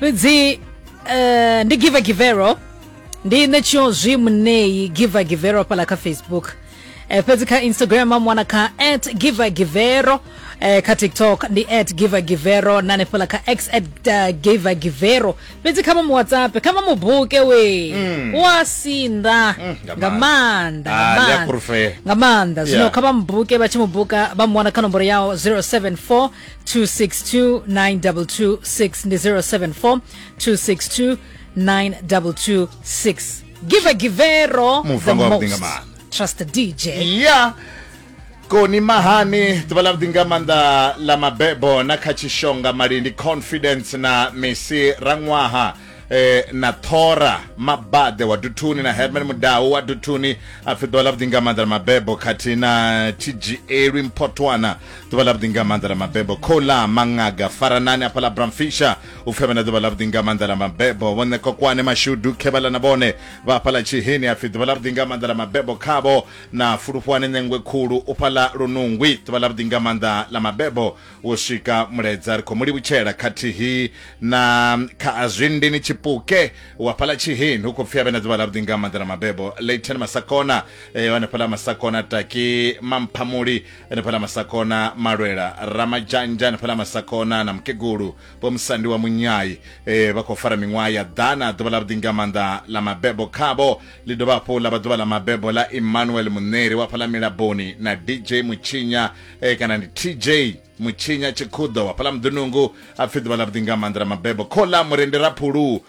fhedzi eh, ndi giver givero ndi nṋe tshiozwi muṋei giver givero fhala kha facebook Eh, fhedzi kha instagram amwana kha at giver givero eh, kha tiktok ndi at giver givero na hanefhala kha x at uh, giver givero fhedzi kha mamu whatsapp kha mamu buke we wa sinda nga nga maanḓa. maanḓa Ah, nga ndi a maanḓa. fhulufhela. nga maanḓa zwino Yeah. kha vha mubuke vha tshi mubuka vha muwana kha nomboro yawo 074 262 9226 ndi 074 262 9226 give givero the Muvango wa most vhuḓinga maanḓa. trust the dj ya koni mahani ḓuvha ḽa vhuḓi nga maanḓa ḽa mabebo na kha tshishonga malindi confidence na misi raṅwaha eh, na thora mabaḓe wa duthuni na herman mudau wa duthuni a pfi ḓuvha ḽa vhuḓi nga maanḓa ḽa mabebo khathihi na tshigieelwi mphotwana ḓuvha ḽa vhuḓi nga maanḓa ḽa mabebo khola mangaga faranani afha ḽa bramfisha u pfhe vhana ḓuvha ḽa vhuḓi nga maanḓa ḽa mabebo vho ṋe kokwane mashudu khevhala na vhone vha afha ḽa tshiheni apfi ḓuvha ḽa vhuḓi nga maanḓa ḽa mabebo khavho na fulufhuwani ṋengwe khulu u fha ḽa lunungwi ḓuvha ḽa vhuḓi nga maanḓa ḽa mabebo wo swika muledza ri khou mu livhutshela khathihi na kha azwindini tshipuke wa fha ḽa tshiheni hu khou pfhi avhe na ḓuvha ḽa vhuḓi nga maanḓa ḽa mabebo leighton masakona eh, hanefha ḽa masakona taki mamphamuli hanefhaḽa masakona malwela ramadzhanzha hanefhaḽa masakona na mukegulu vho musandi wa munyai e, vha khou fara miṅwaha ya ḓana ḓuvha ḽa vhuḓi nga maanḓa ḽa mabebo khavho ḽi dovha hafhu ḽa vha ḓuvha ḽa mabebo ḽa emmanuel muneri wa fhaḽa milaboni na dj mutshinya e, kana ndi tj mutshinya tshikhuḓo wa fhaḽa muḓunungu a pfhi ḓuvha ḽa vhuḓi nga maanḓa ḽa mabebo khola murendi raphulu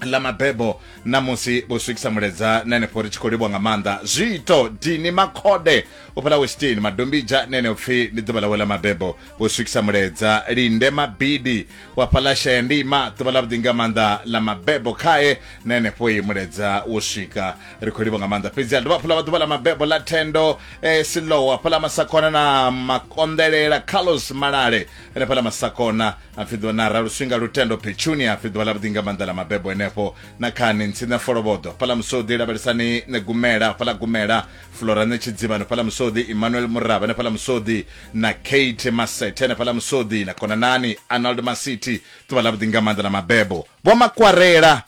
ḽa mabebo na musi vho swikisa muledza na henefho ri tshi khou livhwa nga maanḓa zwiito dini makhode u fhela westini madombija na heneo pfhi ndi ḓuvha ḽawe ḽa mabebo vho swikisa muledza linde mabidi wa fhaḽa shaya ndima ḓuvha ḽa vhuḓi nga maanḓa ḽa mabebo khae na henefho i muledza wo swika ri khou livhwa nga maanḓa fhedzi a dovha hafhu ḽa vha ḓuvha ḽa mabebo ḽa thendo eh, silowa fhaḽa masakona na makonḓelela carlos malale henefhaḽa masakona a pfi ḓuvha na ra luswinga lutendo petunia a pfi ḓuvha ḽa vhuḓi nga maanḓa ḽa mabebo henefho na khani ntsina folobodo fhala musodi lavhelesani ne gumela fhala gumela flora ne tshidzivhano fhala musodi emmanuel muraba ne fhala musodi na kate masete ne fhala musodi na konanani arnold masiti ḓuvha ḽa vhuḓi nga maanḓa ḽa mabebo vho makwarela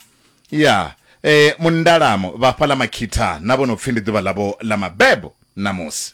ya e mundalamo vha fhala makhitha na vho no pfi ndi ḓuvha ḽavho ḽa mabebo ṋamusi